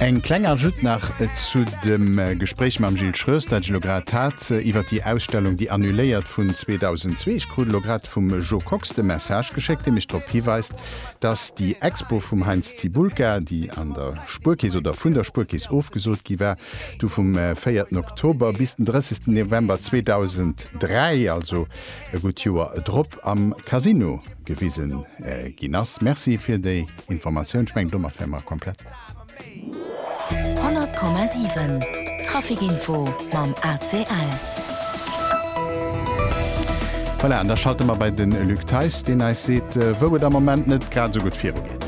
Eng kleng Ajout nach zu dem Gespréich mam Gilles Schroes, dat ech elo grad hat iwwer déi Ausstellung, déi annuléiert vun 2002. Ech krut elo grad vum Jo Kox de Message geschéckt, dee mech drop hiweist, dass déi Expo vum Heinz Cibulka, déi an der Spuerkeess oder vun der Spuerkeess ofgesot gi war, du vum véierten Oktober bis den drëssigsten November 2003, also e gutt Joer drop, am Casino gewisen ginn ass. Merci fir déi Informatioun. Ech mengen domat wäre mer komplett. 100,7 Traficinfo mam ACL. Voilà, an da schalte mer bei de Luc Theis, deen eis seet, wou et am Moment net grad esou gutt viru geet.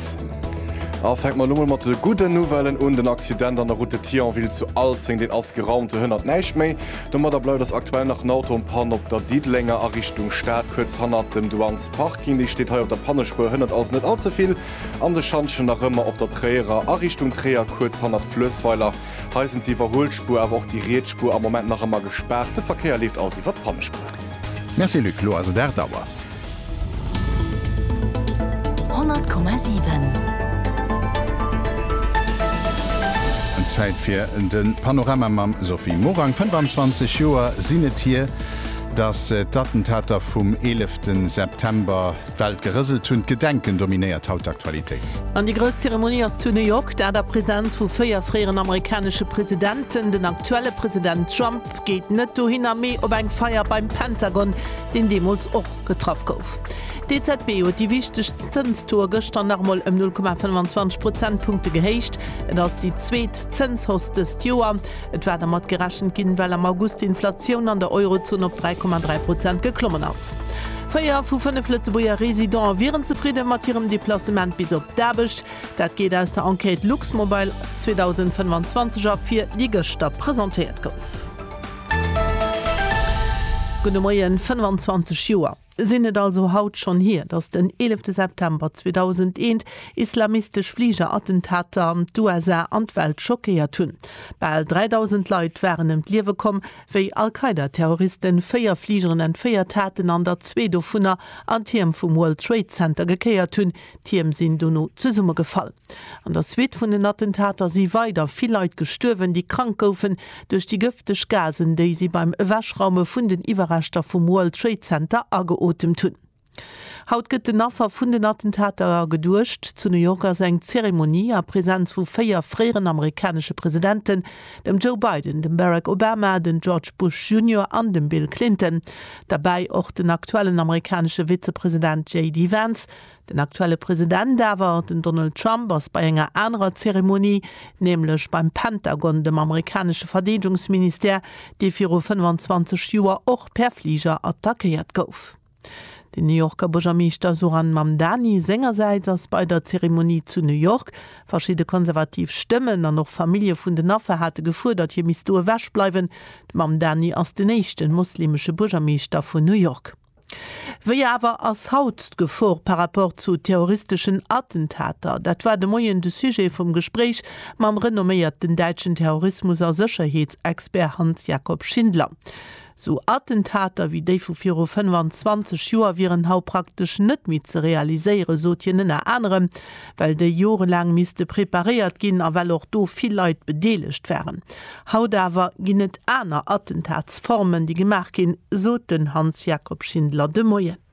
A fänke mer elo mol mat de gudden Nouvellen un. Den Accident an der Route de Thionville zu Alzeng, deen ass geraumt. Do hënnert näischt méi. Domadder bleift ass aktuell nach en Auto en panne op der Diddelenger a Richtung Stad, kuerz hannert dem Douanes Parking. Déi steet hei op der Pannespuer, hënnert also net all ze vill an de Schantjen. Nach ëmmer op der Tréierer a Richtung Tréier, kuerz hannert Fluessweiler. Hei sinn d'Iwwerhuelspuer awer och déi riets Spuer am Moment nach ëmmer gespaart. De Verkéier leeft also iwwer d'Pannespuer. Merci Luc, lo ass et 8 Auer. Zäit fir de Panorama mam Sophie Morang. 25 Joer sinn et hier, datt d'Attentater vum 11 September d'Welt gerëselt hunn. D'Gedenken dominéiert haut d'Aktualitéit. An déi grouss Zeremonie ass zu New York, dat a Presenz vu véier fréieren amerikanesche Presidenten, den aktuelle President Trump, Geet net dohinner, mee op eng Feier beim Pentagon, deen deemools och getraff gouf. D'EZB huet déi wichtegst Zënstaux gëschter nach emol ëm 0,25 Prozentpunkte gehéicht. Et ass déi zweet Zënshausse dëst Joer. Et war dermat gerechent ginn, well am August d'Inflatioun an der Eurozon op 3,3 Prozent geklommen ass. Véier vu fënnef Lëtzebuerger Residente wieren zefridde mat hirem Deplacement bis op d'Aarbecht. Dat geet aus der Enquête Luxmobile 2025 ervir, déi gëschter presentéiert gouf. Gudde Moien, 25 Joer sinn et also haut schonn hier, datt den 11 September 2001 islamistesch Fliger-Attentater an d'USA an d'Welt schockéiert hunn. Bal 3.000 Leit waren ëm d'Liewe komm, wéi Al-Qaida-Terroristen véier Fligeren entféiert haten an der zwee dovunner an d'Tierm vum World Trade Center gekéiert hunn, D'Tierm sinn dono zesummegefall. An der Suite vun den Attentater si weider vill Leit gestuerwen, déi krank goufen duerch déi gëfteg Gasen, déi si beim Ewechraume vun den Iwwerreschter vum World Trade Center ageotemt hunn. Haut gëtt den Affer vun den Attentater geduecht. Zu New York ass eng Zeremonie a Presenz vu véier fréieren amerikanesche Presidenten dem Joe Biden, dem Barack Obama, den George Bush Junior an dem Bill Clinton, derbäi och den aktuellen amerikanesche Vizepresident JD Vance. Den aktuelle President awer, den Donald Trump, ass bei enger anerer Zeremonie, nämlech beim Pentagon, dem amerikanesche Verdeedungsministère, dee viru 25 Joer och per Fliger attackéiert gouf. Den New Yorker Buergermeeschter Zohran Mamdani sengersäits ass bei der Zeremonie zu New York. Verschidde konservativ Stëmmen an och Famillje vun den Affer hate gefuerdert, hie misst do ewech bleiwen. De Mamdani ass den éischte mosleemesche Buergermeeschter vun New York. Wéi awer ass haut d'Gefor par rapport zu terroristeschen Attentater? Dat war de Moien de Sujet vum Gespréich mam renomméierten däitschen Terrorismus a Sécherheetsexpert Hans-Jakob Schindler. Sou Attentater wéi déi vu viru 25 Joer wieren haut praktesch net méi ze realiséieren, sot hien ënner anerem, well déi jorelaang misste preparéiert ginn a well och do vill Leit bedeelegt waren. Haut awer ginn et aner Attentatsformen, déi gemaach ginn, sot den Hans-Jacob Schindler de Moien.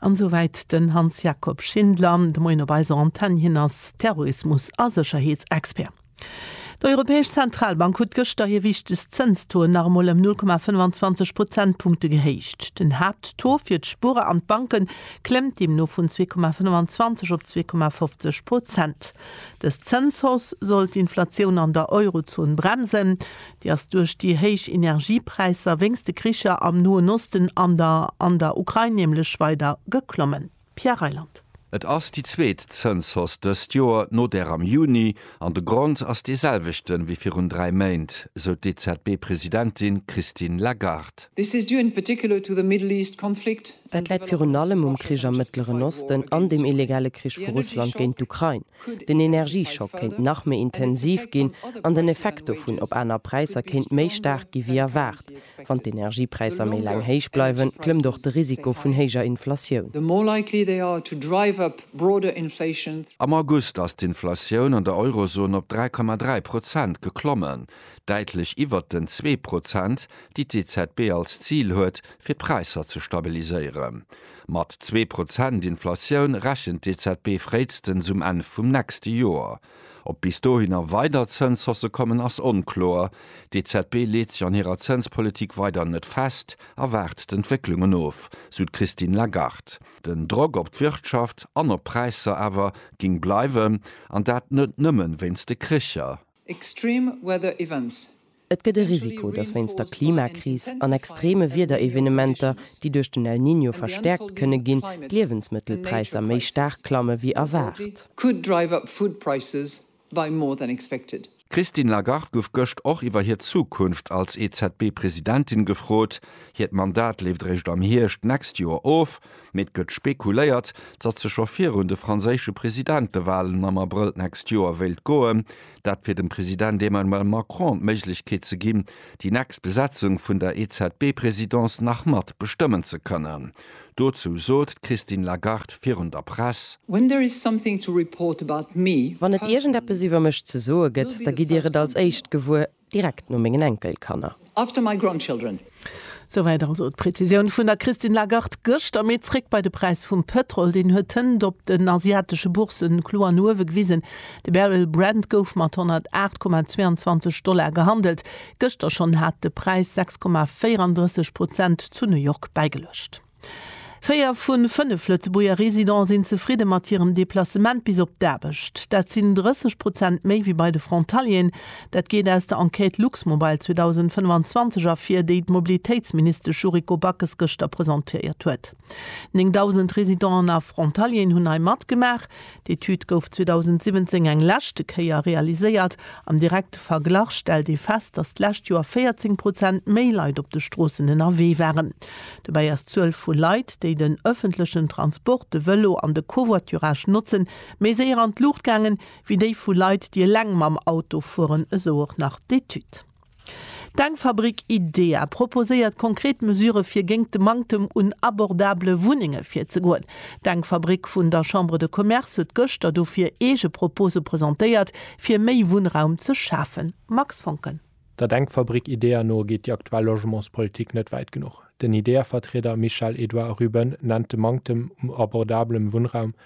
An esou wäit den Hans Jakob Schindler, de Moien op eiser Antenn. Hien ass Terrorismus a Sécherheetsexpert. D'Europäesch Zentralbank huet gëschter hir wichtegst Zënstaux nach emol ëm 0,25 Prozentpunkte gehéicht. Den Haapttaux fir d'Spuerer an d'Banke klëmmt deemno vun 2,25 op 2,50 Prozent. Dës Zënshausse soll d'Inflatioun an der Eurozon bremsen. Déi ass duerch déi héich Energiepräisser wéinst de Kricher am Noen Osten an der an der Ukrain nämlech weider geklommen. Pierre Reyland. Et ass déi zweet Zënshausse dëst Joer, no där am Juni, an de Grond ass dee selwechte wéi virun dräi Méint, sou d'EZB-Presidentin Christine Lagarde. Dat läit virun allem um Krich am Mëttleren Osten an dem illegale Krich vu Russland géint d'Ukrain. Den Energieschock kéint nach méi intensiv ginn an den Effekt dovun op aner Präisser kéint méi staark gi wéi erwaart. Wann d'Energiepräisser méi laang héich bleiwen, klëmmt och de Risiko vun héijer Inflatioun. Am August ass d'Inflatioun an der Eurozon op 3,3 Prozent geklommen, däitlech iwwert den zwee Prozent, déi d'EZB als Zil huet, fir d'Präisser ze stabiliséieren. Mat zwee Prozent Inflatioun rechent d'EZB fréistens um Enn vum nächste Joer. Ob bis dohinner weider Zënshausse kommen, ass onkloer. D'EZB leet sech an hirer Zënspolitik weider net fest a waart d'Entwécklungen of, sou d'Christine Lagarde. Den Drock op d'Wirtschaft an op d'Präisser awer géing bleiwen, an dat net nëmmen wéinst de Kricher, Extreme weather events. Et gëtt e Risiko, dass wéinst der Klimakris an extreme Wiederevenementer, déi duerch den El Niño verstäerkt kënne ginn, d'Liewensmëttelpräisser méi staark klamme wéi erwaart. D'Christine Lagarde gouf gëscht och iwwer hir Zukunft als EZB-Presidentin gefrot. Hiert Mandat leeft eréischt am Hierscht d'nächst Joer of. Mee et gëtt spekuléiert, datt se scho virun de franséische Presidentewalen am Abrëll d'nächst Joer wéilt goen. Dat fir dem President Emmanuel Macron d'Méiglechkeet ze ginn, déi nächst Besetzung vun der EZB-Presidence nach mat bestëmmen ze kënnen. Dozou sot d'Christine Lagarde virun der Press. When there is something to report about me personally, Wann et iergendeppes iwwer mech ze soe gëtt, da gitt Dir et als éischt gewuer. Direkt no mengen Enkelkanner. After my grandchildren. Souwäit also d'Prezisioun vun der Christine Lagarde gëschter. Mee zréck bei de Präis vum Pëtrol. Deen huet d'Hënt op den asiatesche Bourse kloer no uewe gewisen. De Barrel Brent gouf mat 108,22 Dollar gehandelt. Gëschter schonn hat de Präis 6,34 Prozent zu New York bäigeluecht. Véier vu fënnef Lëtzebuerger Residente sinn zefridde mat hirem Deplacement bis op d'Aarbecht. Dat sinn 30 Prozent méi wéi bei de Frontalieren. Dat geet aus der Enquête Luxmobile 2025 ervir, déi d'Mobilitéitsministesch Yuriko Backes gëschter presentéiert huet. 9.000 Residenten a Frontalieren hunn hei matgemaach. D'Etüd gouf 2017 eng leschte Kéier realiséiert. Am direkte Verglach stellt ee fest, datt d'lescht Joer 14 Prozent méi Leit op de Stroossen ënnerwee waren. Dobäi ass d'Zuel vu Leit, déi den ëffentlechen Transport, de Vëlo an de Covoiturage notzen, méi séier an d'Luucht gaangen, wéi déi vu Leit, déi eleng mam Auto fueren, esou och nach d'Etüd. D'Denkfabrik IDEA proposéiert konkret Mesure fir géingt de Manktem un abordabele Wunnenge virzegoen. D'Denkfabrik vun der Chambre de Commerce huet gëschter dofir eege Propose presentéiert, fir méi Wunnraum ze schafen. Max Voncken. Der Denkfabrik IDEA no geet déi aktuell Logementspolitik net wäit genuch. Den IDEA-Vertrieder Michel-Edouard Ruben nennt de Manktem u abordabelem Wunnraum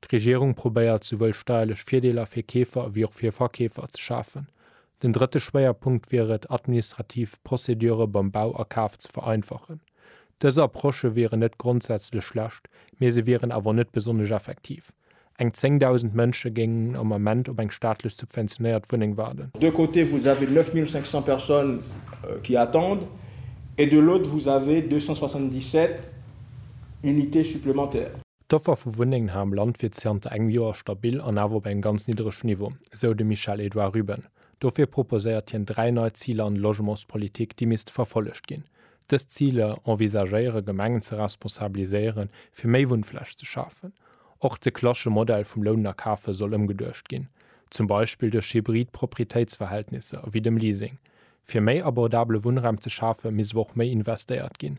D'Regierung probéiert souwuel steierlech Virdeeler fir Keefer ewéi och fir Verkeefer ze schafen. Den drëtte Schwéierpunkt wier et, administrativ Procédure beim Bau a Kaf ze vereinfachen. Dës Approchë wieren net grondsätzlech schlecht, mee se wieren awer net besonnesch effektiv. Eng 10.000 Mënsche géingen am Ament op eng staatlech subventionéiert Wunneng waarden. D'un côté vous avez 9.500 personnes qui attendent et de l'autre vous avez 277 unités supplémentaires. D'Offer vu Wunnengen hei am Land wier zianter engem Joer stabil an awer op engem ganz nidderege Niveau, esou de Michel-Edouard Ruben. Dofir proposéiert hien dräi nei Ziler an der Logementspolitik, déi misste verfollegt ginn. Dës Ziler envisagéiere Gemengen ze responsabiliséieren, fir méi Wunnfläch ze schafen. Och de klassesche Modell vum Lounen a Kafen soll ëmgeduecht ginn, zum Beispill duerch hybrid Proprietéitsverhältnisser, ewéi dem Leasing. Fir méi abordabele Wunnraum ze schafen, misst awer och méi investéiert ginn,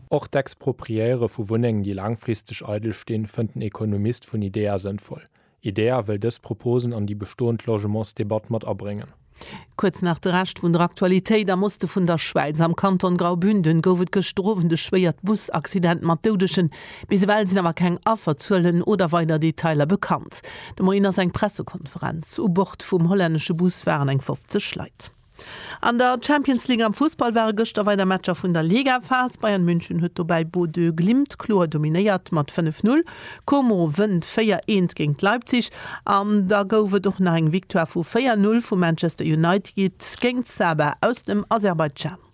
Och d'Expropriéiere vu Wunnengen, déi laangfristeg eidel stinn, fënnt den Ekonomist vun IDEA sënnvoll. IDEA wëll dës Proposen an déi bestoend Logementsdebatt mat abréngen. Kuerz nach de Rescht vun der Aktualitéit, Am Oste vun der Schwäiz, am Kanton Graubünden, gouf et gëschter Owend e schwéiert Busaccident mat Doudegen. Bis ewell sinn awer keng Afferzuelen oder weider Detailer bekannt. De Moien ass eng Pressekonferenz. U Bord vum hollännesche Bus waren eng 50 Leit. An der Champions League am Fussball ware gëschter weider Matcher vun der Ligaphas. Bayern München huet dobäi Bodø Glimt kloer dominéiert mat 5, 0. Como wënnt 4, 1 géint Leipzig an da gouf et och nach eng Victoire vu 4, 0 vu Manchester United géint Sabah aus dem Aserbaidschan.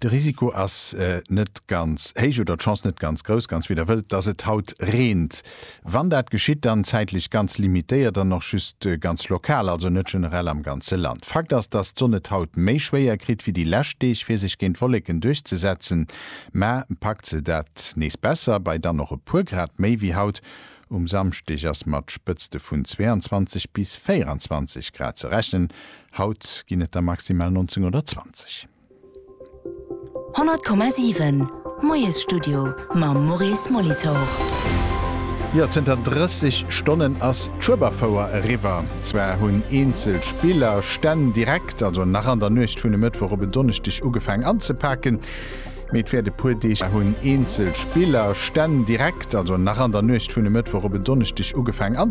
De Risiko ass net ganz héich, oder d'Chance net ganz grouss, ganz wéi der wëllt, dass et haut reent. Wann dat geschitt, dann zäitlech ganz limitéiert an och just ganz lokal, also net generell am ganze Land. Fakt ass, dass d'Sonn et haut méi schwéier kritt wéi déi lescht Deeg, fir sech géint Wolleken duerchzesetzen, mä packt se dat nees besser, bei dann och e puer Grad méi wéi haut. Um Samschdeg ass mat Spëtzte vun 22 bis 24 Grad ze rechnen, haut ginn et der maximal 19 oder 20. 100,7 Moiesstudio mam Maurice Molitor. Jo, zënter 30 Stonnen ass d'Schueberfouer eriwwer. Zwar hunn eenzel Spiller, Stänn direkt, also nach an der Nuecht vun e Mëttwoch op en Donneschdeg ugefaang anzepaken, mee et wäert e puer Deeg daueren, bis d'Schueberfouer erëm voll ausgeschafft ass.